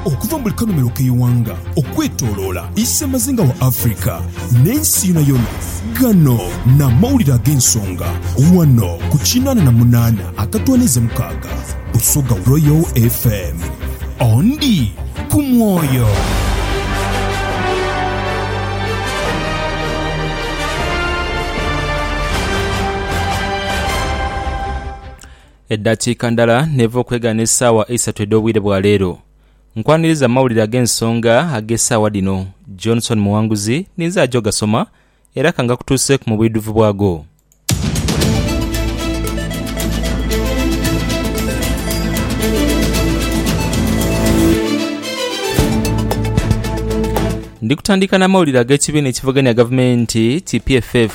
Okuva mu buli kanhumilo k'eighanga okwetoloola isemazinga wa Africa n'ensi yonayona, ghano n'amawulire ag'ensonga ghano ku kinaana na munaana akatwaniiza mukaaga Busoga Royal FM. Ondi ku mwoyo. Eddakiika ndala n'eva okwegana essaawa eisatu edh'obwire bwa leero. Nkwaniriza amawulire ag'ensonga ag'essaawa dhino. Johnson Muwanguzi ninze aja ogasoma era ka ngakutuuseeku mu bwidhuvu bwago. Ndi kutandika n'amawulire ag'ekibiina ekivugania gavumenti ki PFF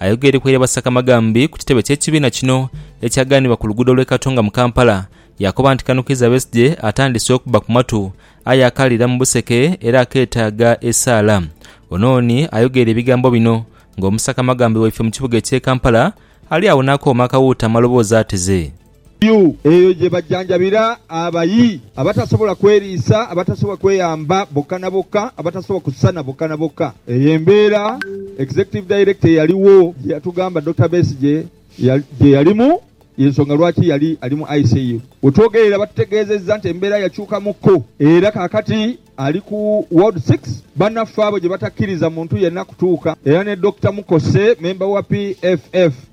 Ayogeire ku eiraba Ssakamaghambi ku kitebe ky'ekibiina kino ekyaganibwa ku luguudo lw'e Katonga mu Kampala, yaakoba nti kano Kiiza Besigye atandise okubba ku matu aye akaalira mu buseke era akeetaaga esaala. Onooni ayogeire ebigambo bino ng'omussakamaghambi waife mu kibuga eky'e Kampala ali agho n'akooma akawuuta amaloboozi ateze. Yu, eyo gye bajanjabira abayi, abatasobola kweriisa, abatasobola kweyamba boka na boka, abatasobola kusana boka na boka. Eyo embeera Executive Director eyaligho gye yatugamba Dokita Besigye gye yalimu, y'ensonga lwaki yali ali mu ICU. We twogerera batutegeezezza nti embeera yakyukamuko era kaakati ali ku Ward Six. Bannaffe abo gye batakkiriza muntu yenna kutuuka era ne Dokita Mukose, memba wa PFF,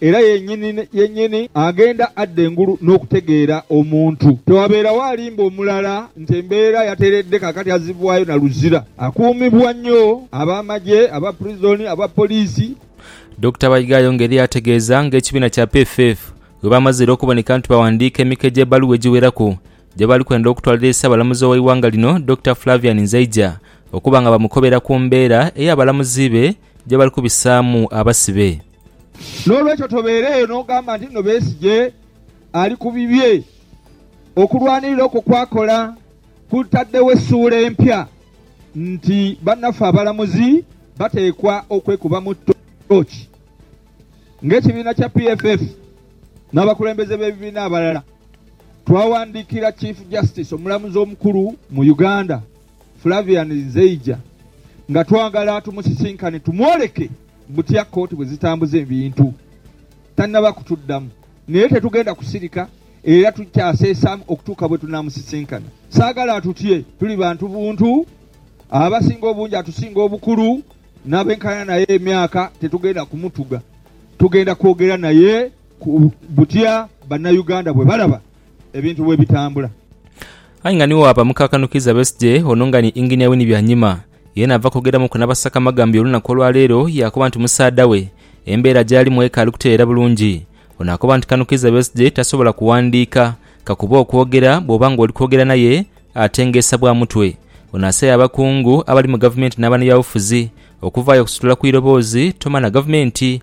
Era yennyini yennyini agenda adda engulu n'okutegeera omuntu. Tewabeerawo alimba omulala nti embeera yateredde kaakati azzibwayo na luzira. Akuumibwa nnyo ab'amagye, aba prison, aba poliisi. Dokita Baiga ayongedhera ategeeza nga ekibiina kya PFF bwe baamazire okuboneka nti baawandiika emiko egy'ebbaluwa egiweraku gye baali kwenda okutwalira eri Ssaabalamuzi ow'eighanga lino Dokita Flavian Nzeija okuba nga bamukobera ku mbeera ey'abalamuzi be gye bali kubisaamu abasibe. N'olwekyo tobeereeyo n'ogamba nti, Nno Besigye ali ku bibye. Okulwanirira okwo kw'akola kutaddewo essuula empya nti bannaffe abalamuzi bateekwa okwekubamu ttooci ng'ekibiina kya PFF n'abakulembeze b'ebibiina abalala. Twawandiikira Chief Justice, Omulamuzi Omukulu mu Uganda, Flavian Nzeija nga twagala tumusisinkane tumwoleke butya kkooti bwe zitambuza ebintu tannaba kutuddamu naye tetugenda kusirika era tukyaseesaamu okutuuka bwe tunaamusisinkana. Saagala atutye, tuli bantu buntu, abasinga obungi atusinga obukulu n'abenkana naye emyaka, tetugenda kumutuga, tugenda kwogera naye ku butya Bannayuganda bwe balaba ebintu bwe bitambula. Aye nga nigho abamuka akanhu Kiiza Besigye, ono nga ni Engineer Winnie Byanyima, yeena ava kwogeramuku n'abasaka amagambo y'olunaku olwa leero yaakoba nti musaadha we embeera gy'alimu ekaali kutereera bulungi. Ono akoba nti kano Kiiza Besigye tasobola kuwandiika kakuba okwogera bw'oba ng'oli kwogera naye atengeesa bwa mutwe. Ono asabye abakungu abali mu gavumenti n'abanabyabufuzi okuvaayo okusitula ku iroboozi Tomanha gavumenti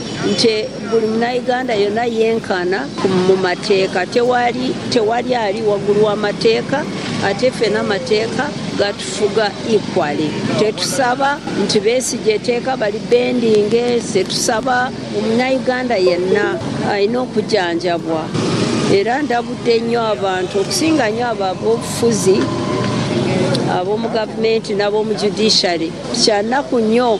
nti buli Munaiganda yona yenkana mu mateeka, tewali tewali ali wagulu wa mateeka ate fena amateeka gatufuga equally. Tetusaba nti Besigye eteeka bali bendinge, tusaba Omunaiganda yenna alina okujanjabwa era ndabudde nyo abantu okusinga nyo abo abobufuzi, abomu gavumenti nabomu judiciary. Kyanaku nyo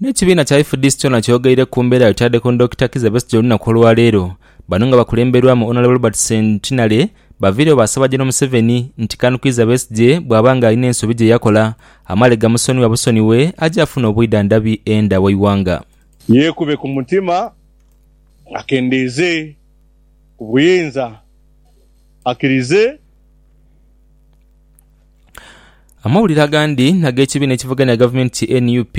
N'ekibiina kya FDC kyona kyogeire ku mbeera yotadde ku Dokita Kizza Besigye olunaku olwaleero, bano nga bakulemberwamu Honourable Robert Centenary baviirewo baasaba General Museveni nti Can Kizza Besigye bwaba nga alina ensobi gyeyakola amale gamusonyiwa busonyiwe aje afune obwidhandhabi enda w'eighanga. Yeekube ku mutima akendeeze ku buyinza, akkirize. Amawulire agandi ag'ekibiina ekivuganya gavumenti ki nup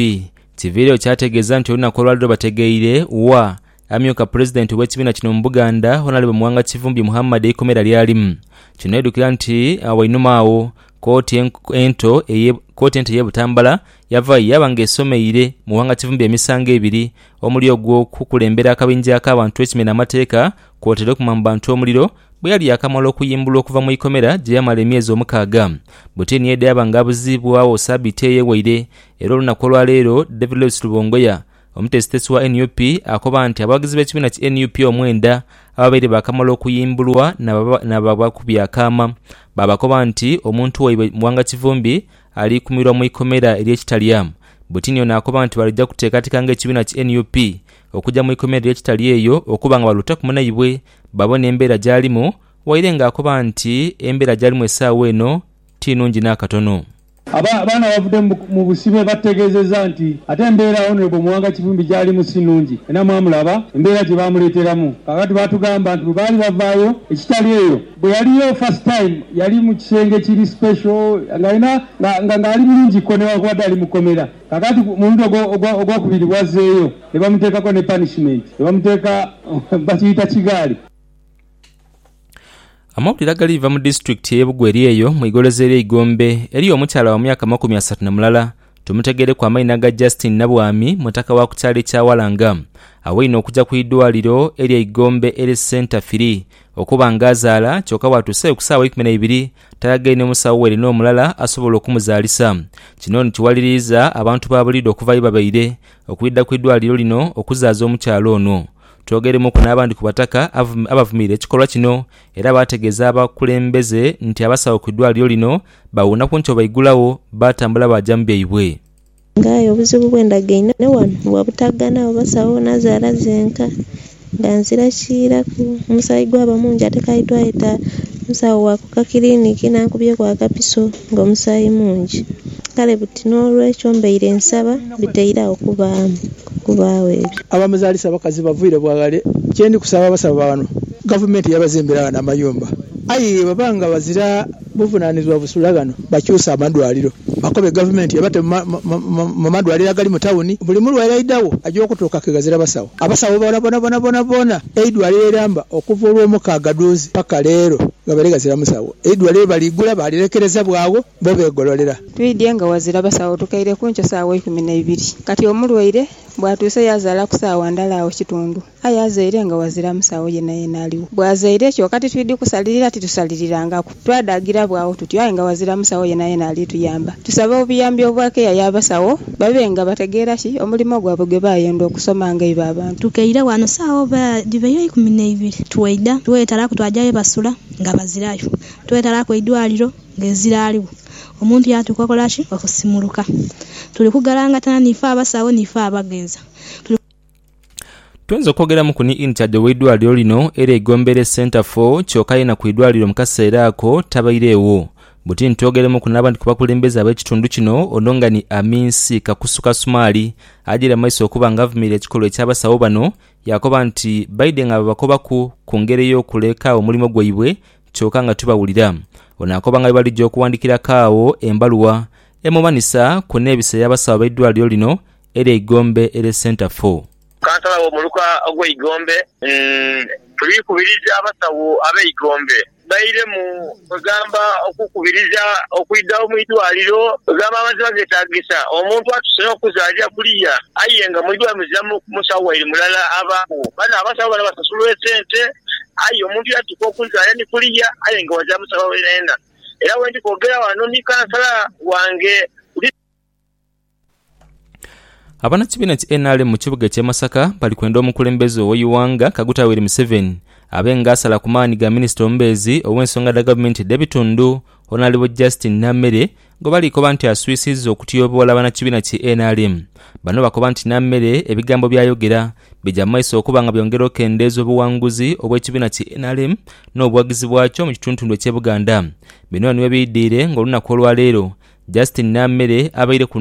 kiviireyo kyategeeza nti olunaku olwaleero bategeire wa amyuka pulezidenti ow'ekibiina kino mu Buganda Honalebo Muwanga Kivumbi Muhammad eikomera ly'alimu. Kino n'oidukira nti wainuma agho kooti ento eye kooti ento ey'e Butambala yavaayo yaaba nga esomeire Muwanga Kivumbi emisango ebiri omuli ogw'okukulembera akabinja ak'abantu ekimenya amateeka Kwotaire okuma mu bantu omuliro, bwe yali yaakamala okuyimbulwa okuva mu ikomera gye yamala emyezi omukaaga. Butini ye dhyaba nga abuziibwagho sabiiti eye waire era olunaku olwa leero David Lewis Rubongoya, omutesitesi wa nup akoba nti abawagizi b'ekibiina ki nup omwenda ababaire baakamala okuyimbulwa naababakubya akaama baabakoba nti omuntu waibwe Muwanga Kivumbi Aliikumirwa mu ikomera ery'ekitalyamu. Bwetinio naakoba nti balija kuteekateeka ng'ekibiina ki nup okugya mu ikomera ery'ekitali eyo okuba nga baluutaku munaibwe babone embeera gy'alimu waire ng'akoba nti embeera gy'alimu essaawa eno ti nnungi n'akatono. Aba bano abavudde mu busibe batutegeezezza nti ate embeera Honourable Muwanga Kivumbi gy'alimu si nnungi era mwamulaba embeera gye baamuleeteramu. Kaakati baatugamba nti bwe baali bavaayo ekitali eyo, Bwe yali yo first time yali mu kisenge kiri special nga alina nga nga ali bulungi ko newankubadde ali mu kkomera. Kaakati ku mulundi ogwo ogwo ogwokubiri bw'azzeeyo ne bamuteekako ne punishment ne bamuteeka bakiyita kigaali. Amawulire agali va mu disitulikiti ey'e Bugweri eyo mu igoloza ery'e Igombe eriyo omukyala wa myaka amakumi asatu na mulala Tumutegereku amaina ga Justine Nabwami mutaka wa ku kyalo ekya Walanga awaine okuja ku idwaliro erye Igombe Health Centre firi okuba nga azaala kyoka bwatuuseyo ku saawa eikumi naibiri talagaine musawo were nomulala asobola okumuzaalisa kino nikiwaliriiza abantu ba bulido okuva yebabaire okwidha ku idwaliro lino okuzaaza omukyala ono. Twogeremuku n'abandi ku bataka abavumirira ekikolwa kino era baategeeza abakulembeze nti abasawo ku idwaliro lino Baawuuna ku nti obaigulagho, baatambula baaja mu byaibwe. Nga aye obuzibu bwe ndagaine ghano bwa butaghana oba sawo nazaala zenka, nga nzira kiiraku. Omusaayi gwaba mungi ate kaidhwayo ta musawo wa ku kakiliniki n'ankubyeku akapiso ng'omusaayi mungi. Kale buti n'olwekyo mbaire nsaba bitaire agho kubaamu kubaagho ebyo. Abamuzaalisa abakazi bavaire bwa ghale. Kye ndi kusaba abasaba ba ghano, Gavumenti yabazimbira ghano amayumba aye ye baba nga bazira. Buvunaanizibwa busula ghano bakyuse amadwaliro, bakobe gavumenti ebate mu madwaliro agali mu tawuni. Buli mulwaire aidhagho aja okutuuka ke ghazira basawo. Abasawo boonabona boonaboona eidwaliro eramba okuva Olwomukaaga dhuuzi paka leero ghabaire ghazira musawo. Eidwaliro baliigula baalirekereza bwagho bo beegololera. Twidhye nga ghazira basawo tukaire ku nkyo saawa ikumi na ibiri kati omulwaire bwatuuse yazaala ku saawa ndala agho kitundu. Aye azaire nga ghazira musagho yenayena aligho. Bw'azaire, kyoka titwidhi kusalirira, titusalirirangaaku. Twadhaagirabwa agho tuti, aye nga ghazira musagho yenayena ali tuyamba. Tusaba obuyambi obwa keya y'abasawo babe nga bategeera ki omulimo gwabwe gwe baayondha okusoma nga ibo abantu. Tukeire ghano saagho bwe dhibaire eikumi n'eibiri. Twaidha, twetalaku twaja ye basula nga bazirayo. Twetalaku eidwaliro nga ezira aligho. Omuntu yaatuuka okola ki? Okusimuluka. Tuli kugalangatana n'ife abasawo n'ife abagheeza. Tuli. Twinza okwogeramuku ni inchage ow'eidwaliro lino era Igombeere Centre for kyoka yena ku idwaliro mu kaseera ako tabairegho. Buti ntwogeremuku n'abandi ku bakulembeze ab'ekitundu kino ono nga ni Aminsi Kakusu Kasumaali agire mu maiso okuba nga avumirira ekikolwa eky'abasawo bano yaakoba nti baidhe nga babakobaku ku ngeri ey'okuleka omulimo gwaibwe kyoka nga tibawulira. Ono akoba nga bwebalija okuwandikiraku agho embaluwa emumanhisa ku neebisa y'abasawo b'eidwaliro lino er'eigombe er'e Centre Four. Kansala w'omuluka ogw'eigombe Tuli kubiriza abasawo ab'eigombe bairemu kwegamba okukubiriza okwidhagho mu idwaliro kwegamba amaziba getagisa omuntu atuse n'okuzalira kuliya aye nga mu idwaliro muziramu musawo waire mulala abagho. Bano abasawo bano basasulwa esente aye omuntu yatuka okuzalira ni kuliya aye nga wazira musawo yenayena era wendi kwogera wano ni kansala wange. Abanakibiina ki nrm mu kibuga ekye Masaka bali kwenda omukulembeze owe Iwanga Kaguta Yoweri Museveni abe nga asala ku maani ga minisita omubeezi owe nsonga dha gavumenti dhe bitundu Honalebo Justine Nammere gwe bali koba nti aswisiiza okutyoboola banakibiina ki nrm. Bano bakoba nti Nammere ebigambo bya yogera bigya mu maiso okuba nga byongera okendeeza obuwanguzi obwe kibiina ki nrm no buwagizi bwakyo mu kituntundu ekye Buganda. Bino niwebiidhire nga olunaku olwa leero Justin Namere abaire ku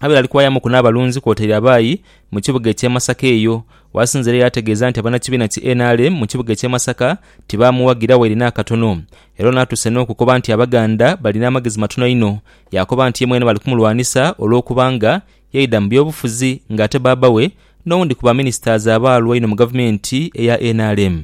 abaire ali kuwayamuku n'abalunzi kwotaire abaayi mu kibuga eky'e Masaka eyo. Wasinze era yaategeeza nti abanakibiina ki nrm mu kibuga eky'e Masaka tibaamuwagira waire n'akatono era ono atuuse n'okukoba nti Abaganda balina amagezi matono inho. Yaakoba nti ye mwene bali kumulwanisa olw'okuba nga yaidha mu byobufuzi ng'ate baabawe n'owundi ku baminisitazi abaalwa inho mu gavumenti eya nrm.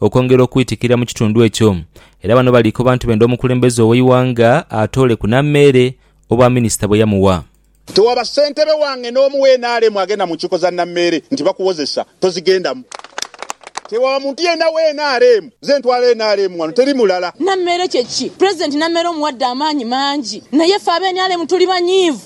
okwongera okwitikirira mu kitundu ekyo era bano bali koba nti benda omukulembeze ow'eighanga atooleku na meere obwa minisita bwe yamuwa. Tewaba ssentebe wange n'omu wa nrm agenda mu nkiiko za nammeere nti bakuwozesa tozigendamu. Tewaba muntu yenna wa nrm. Nze ntwala nrm wano teri mulala. Nammeere kye ki? Pulezidenti Nammeere omuwadde amaanyi mangi naye ffe aba nrm tuli banyiivu.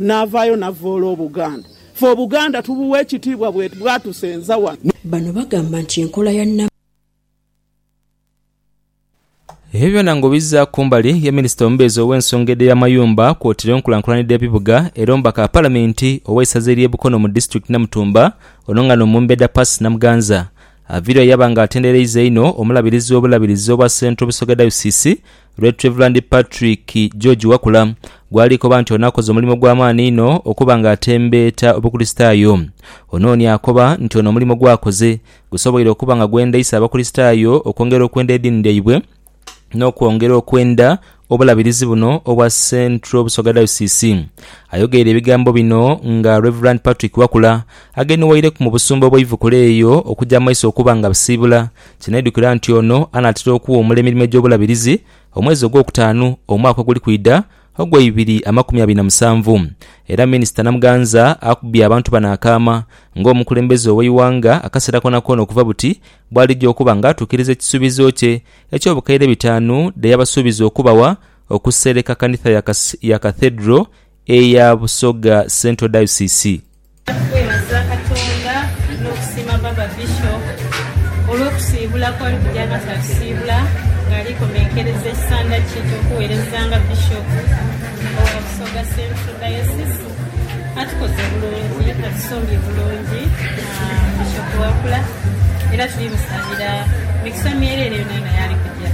Naavaayo navvoola Obuganda. Ffe Obuganda tubuwa ekitiibwa bwatusenza wano. Bano bagamba nti enkola ya. Ebyo byona nga obizza kumbali ye Minisita omubeezi ow'ensonga edh'eby'amayumba kwotire enkulankulana edh'ebibuga era omubaka wa Palamenti owe isaza ery'e Bukono mu Disitulikiti Namutumba ono nga n'omumbeda Percy Namuganza aviirwa yaba nga atendereiza einho omulabirizi w'obulabirizi obwa Central Busoga Dayosiisi Ret Rev Patrick George Wakula gw'alikoba nti ono akoze omulimu gwa maani inho okuba nga atembeeta Obukristaayo. Ono ni akoba nti ono omulimu gw'akoze gusoboire okuba nga gwendheisa Abakristaayo okwongera okwenda ediini dhaibwe n'okwongera okwenda Obulabirizi buno obwa Central Busoga Diocese. Ayogeire ebigambo bino nga Rev Patrick Wakula agenheweireku mu busumba obw'eivukula eyo okuja mu maiso okuba nga basiibula Kinaidhukira nti ono anaatera okuwa omula emirimo egy'obulabirizi omwezi ogwokutaanu omwaka oguli kwidha ogwa ibiri amakumi abiri na musanvu era Minisita Namuganza akubye abantu bano akaama ng'omukulembeze ow'eighanga akaseera koonakoona okuva buti bw'alija okuba nga atuukiriza ekisuubizo kye eky'obukaire bitaanu dhe yabasuubiza okubawa okusereka kanitha ya Cathedral eya Busoga Central Diocese. Twebaza Katonda n'okusiima Baaba Bishop olw'okusiibula kw'ali kugya nga tatusiibula ng'ali komenkereza ekisanda kye eky'okuweereza nga Bishop owa Busoga Central Diocese. Atukoze bulungi, atusumbye bulungi Bishop Wakula era tuli musabira mikisa myereere yonayona y'ali kugya.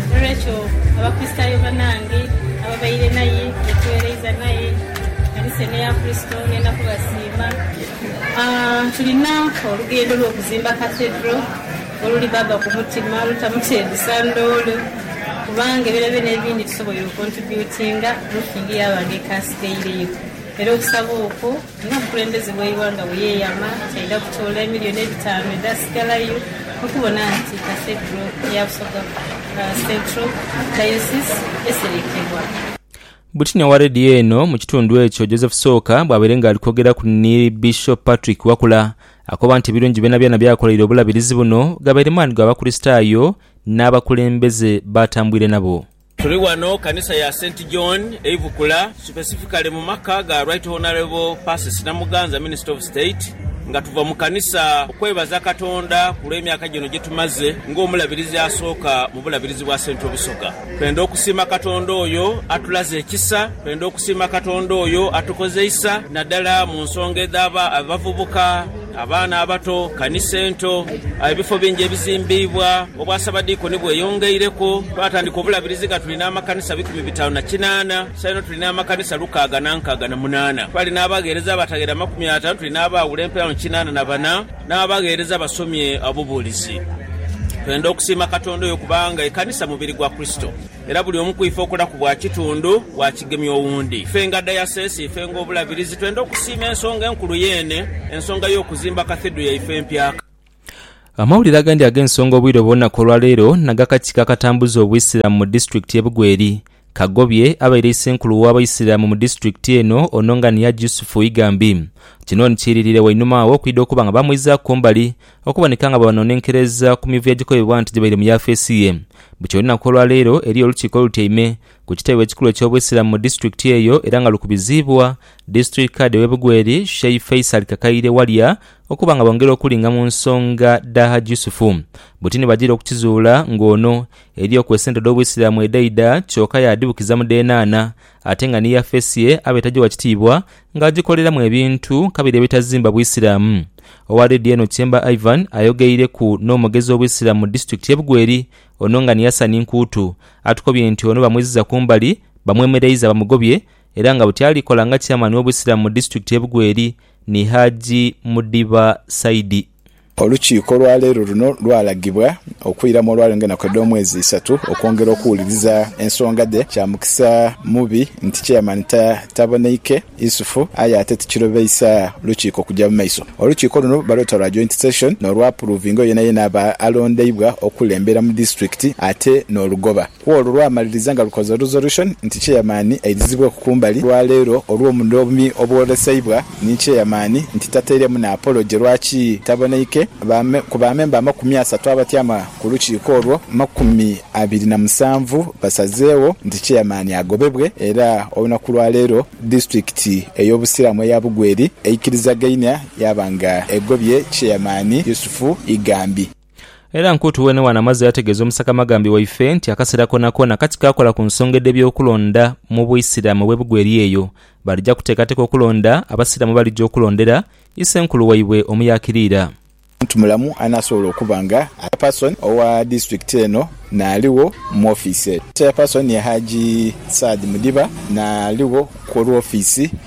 N'olwekyo Abakristaayo banange ababaire naye, betweereiza naye, ekanisa eno eya Kristo. Ngenda kubasiima. Tulina olugendo lw'okuzimba Cathedral oluli Baaba ku mutima, olutamutendesa ndoole kuba nge byonabyona ebindi tusoboire okontributinga, Mukingi yaaba nga eka asigaireyo era okusaba okwo nga omukulembeze w'eighanga bwe yeeyama nti aidha kutoola emilioni edhitaanu edhasigalayo okubona nti Cathedral ya Busoga Central Diocese eserekebwa. Bwetinia wa leediyo eno mu kitundu ekyo, Joseph Sooka bwabaire nga ali kwogeraku ni Bishop Patrick Wakula, akoba nti ebirungi byonabyona by'akoleire obulabirizi buno gabaire maani ga Bakurisitaayo n'abakulembeze b'atambwire nabo. Tuli ghano kanisa ya Saint John e Ibukula, specifically mu maka ga Right Honourable Persis Namuganza, Minister of State, nga tuva mu kanisa okwebaza Katonda ku lw'emyaka gino gyetumaze ng'omulabirizi asooka mu bulabirizi bwa Central Busoga. Twendha okusiima Katonda oyo atulaze ekisa. Twendha okusiima Katonda oyo atukozeisa nadala mu nsonga edhaba abavubuka, abaana abato, kanisa ento, ebifo bingi ebizimbiibwa, obwasabadiikoni bweyongeireku, twatandika obulabirizi nga tuli n'amakanisa bikumi bitaanu na kinaana, saino tuli n'amakanisa lukaaga na nkaaga na munaana. Twali n'abagheereza abataghera amakumi ataanu, tuli n'abaaghula empeerano kinaana na bana. N'abagheereza basomye obubuulizi. Twenda okusiima Katonda oyo kubanga ekanisa mubiri gwa Kurisito, era buli omu ku ife okolaku bwa kitundu bwa kigemya owundi. Ife nga dayasesi, ife nga Obulabirizi, twenda okusiima ensonga enkulu yeene, ensonga y'okuzimba Kathedro yaife empya. Amawulire agandi ag'ensonga obwire obw'olunaku olwaleero naga kakiiko akatambuza Obwisilamu mu disitulikiti ye Bugweri Kagobye abaire isenkulu w'Abaisiramu mu disitulikiti eno Ononganiah Jusufu Igambi kino nkiiririire wainuma agho okwidha okuba nga bamwizaaku ku mbali okuboneka nga bwebanonenkereza ku mivuyo egikobebwa nti gibaire mu yafeesi ye bukya olunaku olwaleero eriyo olukiiko olutyaime ku kitebe ekikulu eky'Obusiramu mu disitulikiti eyo era nga lukubiziibwa District Khadi w'e Bugweri Sheih Faisal Kakaire Walya okuba nga bongera okulinga mu nsonga dha Haji Yusufu buti nibagira okukizuula ng'ono Eriyo ku esente dh'Obuisiramu edhaidha kyoka yaadhibukiza mu dhenana, ate nga ni Yafesi ye aba etajiwa kitiibwa nga ajikoleramu ebintu kabiri ebitazimba Buisiramu. Owa leediyo eno Chemba Ivan ayogeireku n'omugezi w'Obuisiramu mu disitulikiti y'e Bugweri ono nga ni Hassan Nkuutu atukobye nti ono bamwiziza ku mbali bamwemereiza bamugobye era nga buti alikola nga Chairman w'Obuisiramu mu disitulikiti y'e Bugweri ni Haji Mudiba Saidi. Olukiiko olwa leero luno lwalagibwa okwiramu olwaleero ng'enaku edh'omwezi isatu okwongera okuwuliriza ensonga dhe. Kya mukisa mubi nti Chairman taboneike Isufu aye ate tikirobeisa lukiiko kuja mu maiso. Olukiiko luno balweta lwa Joint Session n'olwapuruvinga oyo yenayena aba alondeibwa okukulembera mu disitulikiti ate n'olugoba. Ku olwo lwamaliriza nga lukoze resolution nti chairman airizibweku kumbali olwaleero olw'obunomi obwoleseibwa ni chairman nti tateiremu na apology lwaki taboneike ku ba member amakumi asatu abatyama ku lukiiko olwo makumi abiri na musanvu basazeewo nti chairman agobebwe era olunaku lwa leero disitulikiti ey'obusiramu eya Bugweri eikirizagainia yaba nga egobye chairman Yusufu Igambi. Era Nkuutu wenewano amaze yategeeza omusakamagambi waife nti akaseera koonakoona kati kaakola ku nsonga edh'ebyokulonda mu Buisiramu obw'ebugwa eri eyo balija kuteekateeka okulonda, Abasiraamu balija okulondera Isenkulu waibwe omuyakiriira. Muntu mulamu anaasobola okuba nga Chairperson owa Disitulikiti eno n'aligho mu ofiisi eyo. Chairperson ye Hajji Saad Mudiba n'aligho ku olw'ofiisi.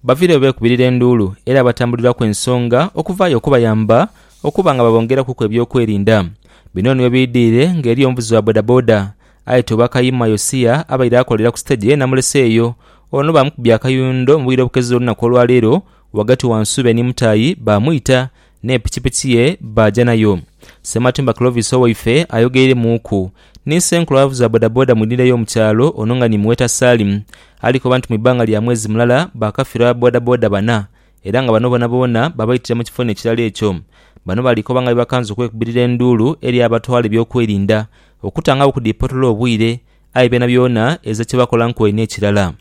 Baviire bwebekubirira enduulu era batambuliraku ensonga okuvaayo okubayamba okuba nga babongerakuku eby'okwerinda. Bino niwe biidhiire nga eriyo omuvuzi wa bodaboda aye Tobakayima Yosia abaire akolera ku siteegi eye namuleseeyo ono baamukubye akayundo mu bwire obukeze olunaku olwaleero ghagati wa Nsuube ni Mutayi baamwita ne pikipiki ye baaja nayo. Ssematimba Clovis owaife ayogeiremuuku ni senkulu avuza bodaboda mu idhindha y'omu kyalo ono nga ni Muweta Salim alikoba nti mu ibbanga lya mwezi mulala baakafirwa bodaboda bana era nga bano boonaboona babaitira mu kifo n'ekirala ekyo. Bano balikoba nga bwe bakanze okwekubirira enduulu eri abatwala ebyokwerinda okutangagho okudipotoola obwire aye byonabyona ezira kye bakola nkoye n'ekirala.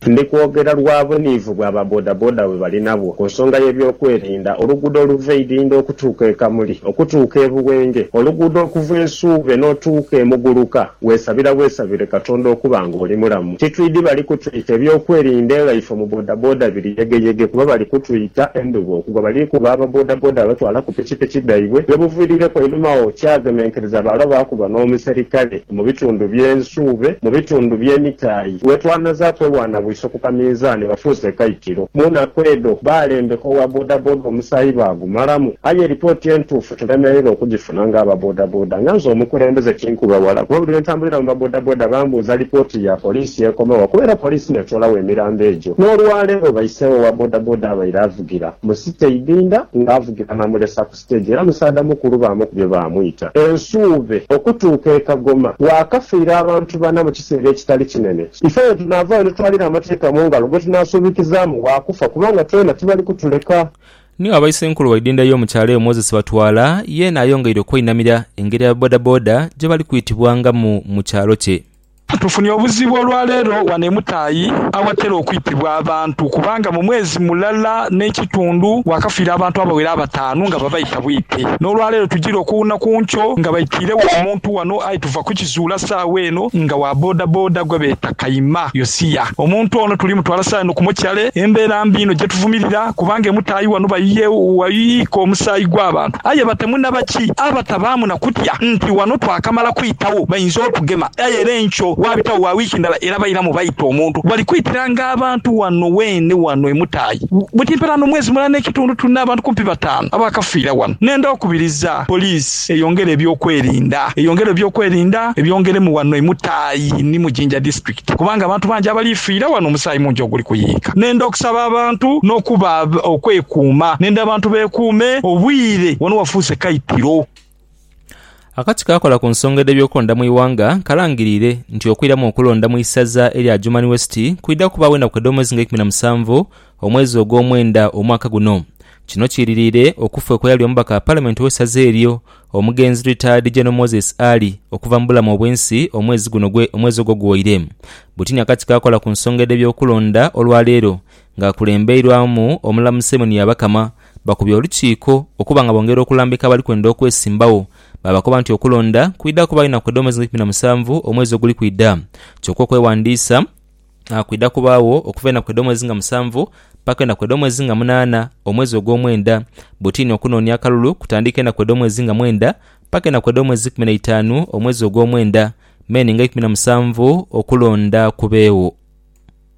Ndi kwogera lwa buniivu bwa ba bodaboda bwe bali nabwo ku nsonga y'ebyokwerinda. Oluguudo oluva e Idhindho okutuuka e Kamuli, okutuuka e Buwenge, oluguudo okuva e Nsuube n'otuuka e Muguluka, weesabira bwesabire Katonda okuba ng'oli mulamu. Titwidhi bali kutwita ebyokwerinda nga ife mu bodaboda biri yegeyege kuba bali kutwita endhuba okugwa. Bali kuba aba bodaboda abatwala ku pikipiki dhaibwe bye buviirireku einhuma agho kyagemenkereza baalo baakuba n'omuserikale. Mu bitundu bye Nsuube, mu bitundu bye Mitaayi, wetwanazaaku erwana bwiso ku kaminzaani bafuuse ekaitiro. Mu naku edho baalembeka owa bodaboda omusaayi baagumalamu. Aye lipooti entuufu tulemereire okugifuna nga aba bodaboda. Nga nze omukulembeze kinkuba ghala kuba buli lwe ntambulira mu ba bodaboda bambuuza lipooti ya poliisi ekoma wa kuba era poliisi n'etwolagho emirambo egyo. N'olwaleero baiseewo owa bodaboda abaire avugira mu City Ibinda nga avugira Namulesa ku. siteegi era musaadha mukulu baamukubye baamwita e Nsuube okutuuka e Kagoma waakafiira abantu bana mu kiseera ekitali kinene. Ife aye tunaavaayo ni twalira amateeka mu ngalo gwe tunaasuubikizaamu waakufa kubanga twena tibali kutuleka. Niyo aba Isenkulu w'eidinda y'omu kyalo eyo Moses Batwala yeena ayongeire okwainamira engeri aba bodaboda gye bali kwitibwangamu mu kyalo kye. Tufunye obuzibu olwaleero wano e Mutaayi awatera okwitibwa abantu kubanga mu mwezi mulala n'ekitundu wakafiira abantu abawera abataanu nga babaita bwite. N'olwaleero tujire okuwuna ku nkyo nga baitiiregho omuntu wano aye tuva kukizuula saagho eno nga wa bodaboda gwebeeta Kayima Yosia. Omuntu ono tuli mutwala saagho eno ku mochare embeera mbi inho gyetuvumirira kubanga e Mutaayi wano bayiika omusaayi gw'abantu aye batemu nabaki abatabaamu na kutya nti wano twakamala kwitibwa. baabitagho bainza okugema. Aye era enkyo waabitagho wa wiiki ndala era bairamu baita omuntu. Bali kwitiranga abantu wano weene wano e Mutayi. Buti mperaano omwezi mulala n'ekitundu tulina abantu kumpi bataanu abaakafiira wano. Nenda okubiriza poliisi eyongere ebyokwerinda. Eyongere ebyokwerinda, ebyongeremu wano e Mutayi ni mu Jinja District kubanga abantu bangi abali fiira wano omusaayi mungi oguli kuyiika. Nenda okusaba abantu n'okuba okwekuuma. Nenda abantu beekuume, obwire wano wafuuse kaitiro. Akati kaakola ku nsonga edh'ebyokulonda mu ighanga kalangiriire nti okwiramu okulonda mu isaza erya Adjumani West kwidha kubaawo enaku edh'omwezi nga eikumi na musanvu omwezi ogwomwenda omwaka guno. Kino kiiririire okufa okw'eyali omubaka wa palamenti ow'esaza eryo omugenzi Retired General Moses Ali okuva mu bulamu obw'ensi omwezi guno omwezi ogwo guwoire. Butini akati kaakola ku nsonga edh'ebyokulonda olwaleero ng'akulembeirwamu omulamu Simon Byabakama Bakubye olukiiko okuba nga bongera okulambika abali kwenda okwesimbagho, baabakoba nti okulonda kwidha kubaayo enaku edh'omwezi nga ikumi na musanvu omwezi oguli kwidha, kyoka okweghandiisa kwidha kubaagho okuva enaku edh'omwezi nga musanvu paka enaku edh'omwezi nga munaana omwezi ogw'omwenda, butini okunoonia akalulu kutandiika enaku edh'omwezi nga mwenda paka enaku edh'omwezi ikumi na itaanu omwezi ogw'omwenda, Mei nga ikumi na musanvu okulonda kubeegho.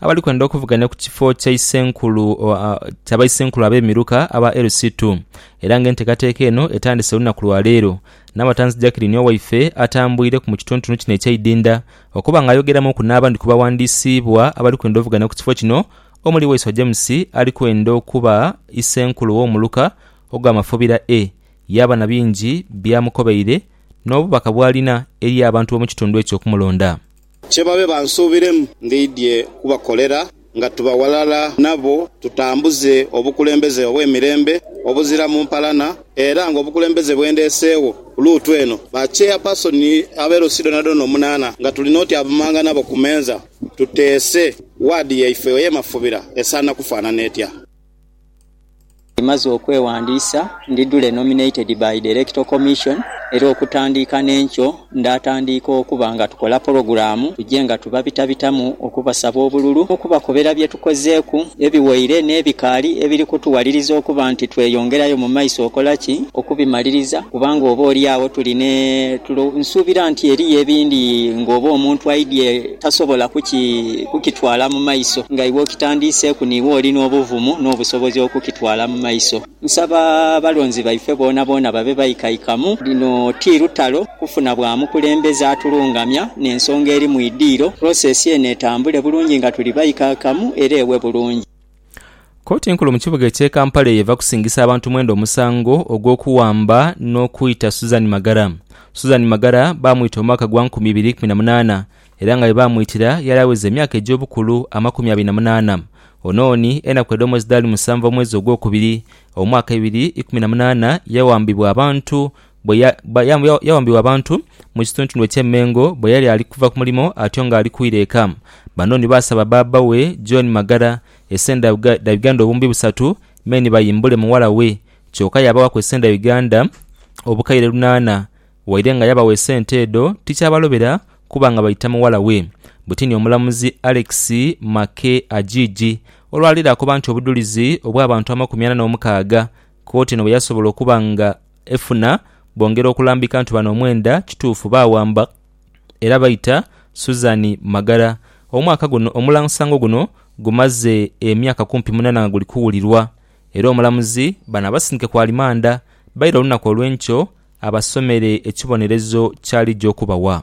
abali kwenda okuvuganya ku kifo kya isenkulu kya baisenkulu ab'emiruka aba LC2 era nga enteekateeka eno etandise olunaku lwa leero Namatanzi Jacqueline Owaife atambwireku mu kitontonu kino eky'eidinda okuba nga ayogeramuuku n'abandi ku bawandiisiibwa abali kwenda ovuganya ku kifo kino omuli Waiswa James ali kwenda okuba isenkulu w'omuluka ogwa Mafobira A yaaba na bingi by'amukobeire n'obubaka bw'alina eri abantu b'omu kitundu ekyo okumulonda. Kye babe bansuubiremu ndidhie kubakolera nga tuba ghalala nabo, tutambuze obukulembeze obw'emirembe obuziramu mpalana, era ng'obukulembeze bwe ndeeseegho ku Luutu eno, bakyeyapaasoni ab'e Luusi dhonadhona omunaana, nga tuli n'otyavumanga nabo ku meeza, tuteese waadi yaife ey'emafubira esaana kufaanana etya. Ndimaze okwewandiisa ndi dule nominated by the Electoral Commission era okutandiika n'enkyo ndaatandiika okuba nga tukola pulogulaamu tuje nga tubabitabitamu okubasaba obululu n'okubakobera bye tukozeeku ebiwaire n'ebikaali ebiri kutuwaliriza okuba nti tweyongerayo mu maiso okola ki okubimaliriza kubanga oba oli agho tulina tulo. Nsuubira nti eriyo ebindi ng'oba omuntu aidye. Tasobola kukitwala mu maiso nga iwe okitandiiseeku niiwe oli n'obuvumu n'obusobozi okukitwala mu maiso. Nsaba abalonzi baife boonaboona babe baikaikamu. Lino ti lutalo kufuna bwa mukulembeze atulungamya n'ensonga eri mu idiiro. Process eno etambule bulungi nga tuli baikaikamu era ewe bulungi. Kooti enkulu mu kibuga ekye Kampala eyo eva kusingisa abantu mwenda omusango ogw'okuwamba n'okwita Suzan Magara. Suzan Magara baamwita mu mwaka gwa nkumi ibiri ikumi na munaana era nga ye baamwitira yali aweza emyaka egy'obukulu amakumi abiri na munaana. Ono oni enaku edh'omwezi dhaali musanvu omwezi ogwokubiri omwaka ebiri ikumi na munaana yawambibwa abantu bwe ya, ba- ya- ya- yawambibwa abantu mu kitundutundu eky'e Mengo bwe yali ali kuva ku mulimo atyo ng'ali kwira eka. Bano ni baasaba bbaabba we, John Magara, esenda dha Uga- dha Uganda obumbi busatu me ni bayimbule mughala we. Kyoka yabawaku esenda dha Uganda obukaire lunaana. Waire nga yabawa esente edho, tikyabalobera kuba nga baita mughala we. Bwetiini omulamuzi Alex Mackay Ajiiji olwaleero akoba nti obudhulizi obw'abantu amakumi ana n'omukaaga kkooti eno bwe yasobola okuba nga Efuna bongera okulambika nti bano omwenda kituufu baawamba era baita Susan Magara. Omwaka guno omulansango guno gumaze emyaka kumpi munana nga guli kuwulirwa era omulamuzi bano abasindike ku alimanda baire olunaku olw'enkyo abasomere ekibonerezo ky'alija okubawa.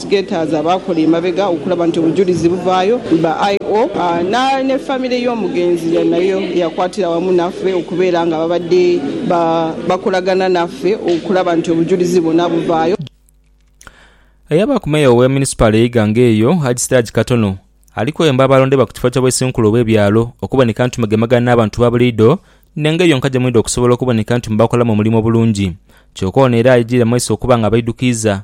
Gators abaakola emabega okulaba nti obujulizi buvaayo ba IO na ne famire y'omugenzi ya nayo yakwatira wamu naffe okubeera nga babadde ba bakolagana naffe okulaba nti obujulizi bwona buvaayo. Eyabaaku Meeya owe Munisipaali e Iganga eyo, Haji Siraji Katono ali kweyamba abalonde ba ku kifo kya bwesinkulo obwe byalo okuboneka nti mugemagana n'abantu ba buliido n'engeri yonka gye mwidha okusobola okuboneka nti mubakolamu omulimu obulungi kyoka ono era ayigiire mu maiso okuba nga abaidukiiza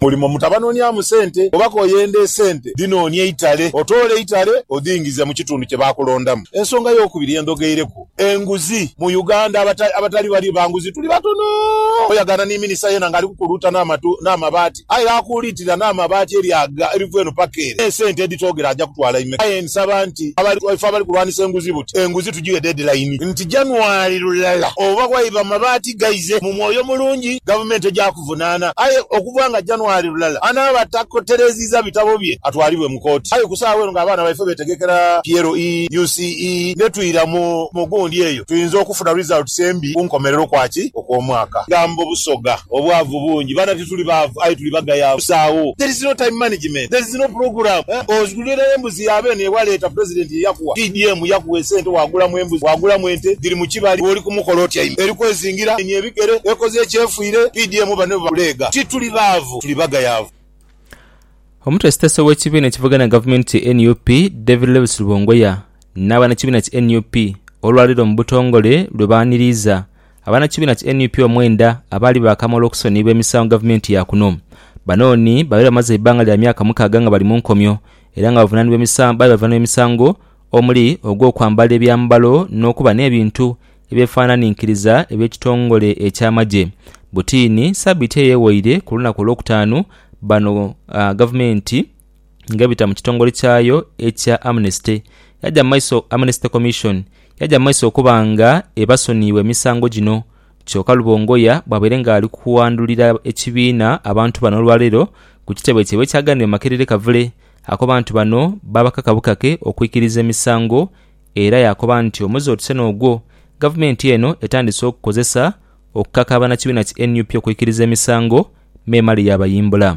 Mulimu mutabanonyamu sente oba koyenda esente dhinonie eitale otoole eitale odhingize mu kitundu kye bakulondamu. Ensonga yokubiri ye ndhogeireku enguzi mu Uganda abatali bali banguzi tuli batono oyagaana ni minisita yena nga ali kukuluuta n'amabaati aye akuuliitirira n'amabaati eryaga eriva eno paka ere n'esente edhitoogera aja kutwala imeka aye nsaba nti ife abali kulwanisa enguzi buti enguzi tugighe deadline nti January lulala oba waiba mabaati Ghaize mu mwoyo mulungi gavumenti eja kuvunaana. Aye okuva nga January lulala, anaaba tatereezizza bitabo bye atwalibwe mu kooti. Aye ku saagha eno ng'abaana baife beetegekera PLE, UCE ne twira mu mu gundi eyo tuyinza okufuna results embi ku nkomerero kwa ki okw'omwaka. Gamba Obusoga, obwavu bungi. Baana tituli baavu aye tuli bagayaavu. Busaagho. There is no time management. There is no program. Ndhula embuzi ya beene ye waleeta Pulezidenti ye yakuwa. PDM yakuwa esente waagulamu embuzi, waagulamu ente, dhiri mu kibali bw'oli ku mukolo otyaime eri kwezingira eni ebigere, ekoze ekyefwire. PDM bano bwe bakuleega tituli baavu, tuli bagayaavu. Omutwe sitesa ow'ekibiina ekivuganya gavumenti ki nup David Lewis Lubongoya n'abanakibiina ki nup olwaleero mu butongole lwe baaniriiza Abanakibiina ki nup omwenda abaali baakamala okusoniibwa emisango gavumenti ya kuno. Bano ni babaire bamaze eibbanga lya myaka mukaaga nga bali mu nkomyo era nga baali bavunaanibwa emisango omuli ogw'okwambala ebyambalo n'okuba n'ebintu ebyefaananinkiriza eby'ekitongole eky'amagye. Butiini, sabiiti eyo eweire ku lunaku Olwokutaanu bano gavumenti, ng'ebita mu kitongole kyayo ekya Amnesty yaja mu maiso Amnesty Commission yaja mu maiso okuba nga ebasoniibwa emisango gino kyoka Lubongoya bwabaire nga ali kuwandulira ekibiina abantu bano olwaleero ku kitebe kyaibwe ekyaganira mu Makerere Kavule akoba nti bano babakaka bukake okwikiriza emisango era yakoba nti omwezi otuse n'ogwo gavumenti eno etandise okukozesa okukaka banakibiina ki nup okwikiriza emisango memale yabayimbula.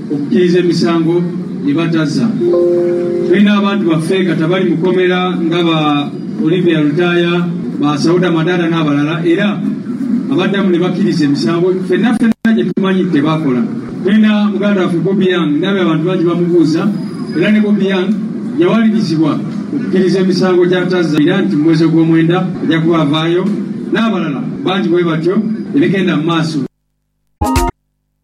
Okukiriza emisango gye bataza. Tulina abantu baffe kati abali mu kkomera nga ba Olivia Lutaaya, ba Sauda Madaada n'abalala era abaddamu ne bakiriza emisango ffenna ffenna gye tumanyi nti tebaakola. Tulina muganda waffe Bobi Young, ndabye abantu bangi bamubuuza era ne Bobi Young yawalirizibwa okukiriza emisango gy'atazza era nti mu mwezi ogwomwenda ajja kuba avaayo n'abalala bangi bwe batyo ebigenda mu maaso.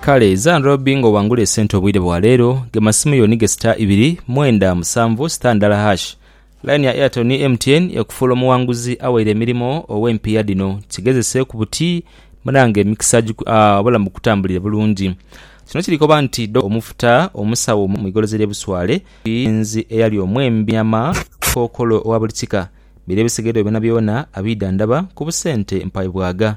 Kale Zanrobi nga owangula esente obwire bwa leero, gema simu yo ni ge star ibiri, mwenda, musanvu, star ndala hash. Line ya Airtel ni MTN ekufuula omuwanguzi awaire emirimo ow'empiiya dhino. Kigezeseeku buti munange emikisa giku aah obulamu bukutambulire bulungi. Kino kiri koba nti Dok. Omufuta, omusawo mu igolozi ly'e Buswale, omugenzi eyali omwembi nyama, kookolo owa buli kika, biri ebisigaire byonabyona abiidhandhaba ku busente mpaebwaga.